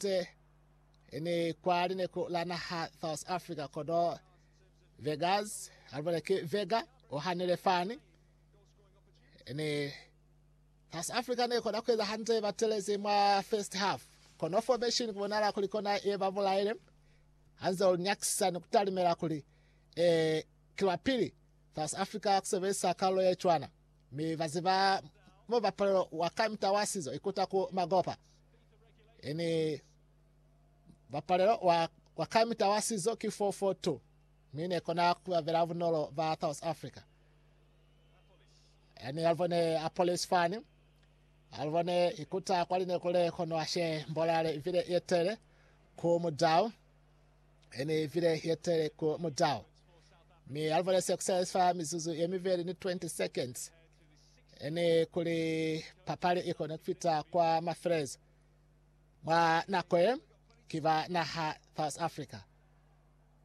Tse ni kwa lineku la naha South Africa kono Vegas alibone ki Vega ohanile fani ni South Africa ne kona kueza hande batelezi mwa first half kono formation kubonala kuli kona ye babulaile hanze ulinyakisa ni kutalimela kuli eh kilwa pili South Africa kusebelisa kalulo ye cwana Mi ba ziba mo bapolelo wa kamita wa sizo ikuta ku magopa. Ini bapolelo wa, wa kamita wa sizo ki 442. Mi ne kona kubabela bunolo ba South Africa. Ani alibone a police fani. Alibone ikuta kwa linekule kono ashe mbolale vile yetele ku mudau. He ne i bile ye tele ku mutau, mi Alvarez ya kusela fa mizuzu ye mibeli ni 20 seconds. He ne kuli papali i kone kufita kwa mafelelezo mwa nako ye, ki ba naha South Africa.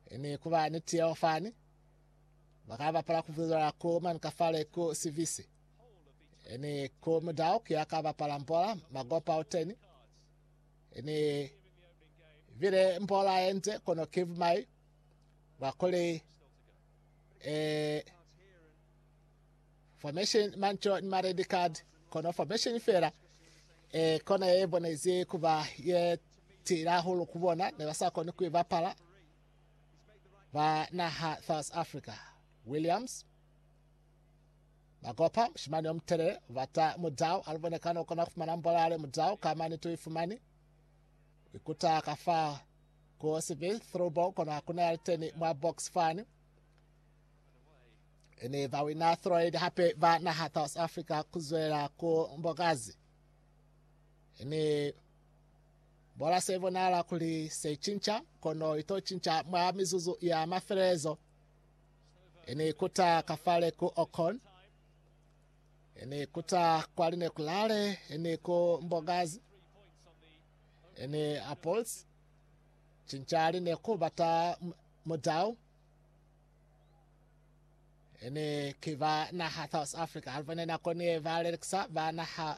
He ne kuba ni tiyeho fani, ba ka bapala ku bulela ku mani kafale ku sibisi. He ne ku mutau ki ya ka bapala mbola magopa uteni. Ni bile mpola yente kono kiv mai ba kuli eh, formation manco ni maredi card kono formation fela eh, kona ye bonezi kuba ye tila hulu kubona ne basa koni ku bapala ba naha South Africa Williams Ba kopa mushimani yo mutelele, u bata mudau, a lubone kana u kona ku fumana mbola ya le mudau, ka mane tu i fumani. U ikuta ka fa ku sibi throwball, kono ku na ya liteni mwa box fani. E ne ba wina throid hape ba naha South Africa ku zwela ku mbokazi. E ne bola se bonala kuli se cinca, kono ito cinca mwa mizuzu ya mafelelezo. Ini ikuta kafale ku Okon, ini ikuta kwa Linekulale, ini ku Mbogazi, ini Apples, cincali ne ku bata mudau, ini ki ba naha South Africa, alivene nako ni ba lelekisa ba naha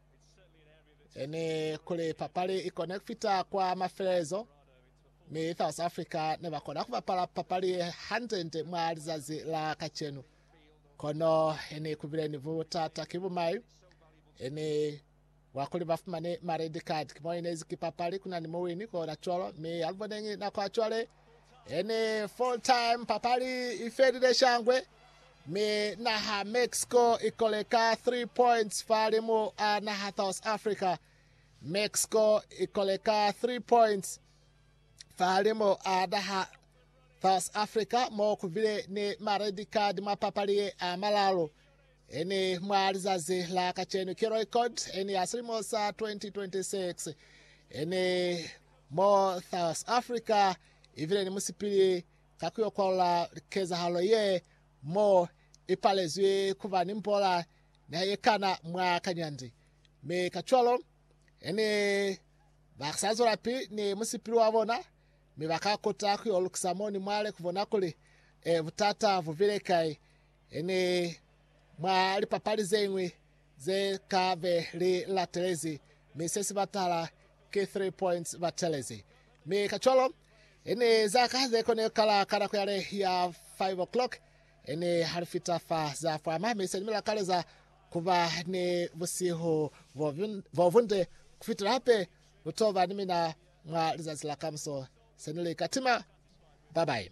Ene kuli papali ikone kufita kwa mafelelezo, mi South Africa ne bakona kubapala papali ye hantente mwa lizazi la kacenu. Kono ene kubile ni butata ki bumai, ene wa kuli bafumane ma red card. Kimo inezi ki papali kuna ni muwini kona cwalo, mi aluboneñi nako acwale. Any full time papali i felile shangwe, mi naha Mexico i kole ka 3 points fahalimu a naha South Africa. Mexico i kole ka 3 points fahalimu a naha South Africa mo ku bile ni ma red card mwa papali ye a malalu. Any mwa lizazi la kacenu ki record any ya silimo sa 2026. Any mo South Africa i bile ni musipili ka ku yo kwalula kezahalo ye mo i palezwi ku ba ni mbola ni ha ye kana mwa kanyandi, mi kacwalo he ne ba sa zwelapili ni musipili wa bona, mi ba ka kota ku yo lukisa mo ni mwale ku bona kuli butata bu bile kai. He ni mwa lipapali ze ñwi ze ka be li latelezi, mi se si ba tahala ki three points ba telezi. Mi kacwalo, i ni za ka ze koni kala ka nako yale ya five o'clock, i ni ha li fita fa za fwama, mi se ni mila kale za ku ba ni busihu bo bunde ku fitela hape lu to ba ni mina mwa lizazi la kamuso. Se ni li ka tima. Bye bye.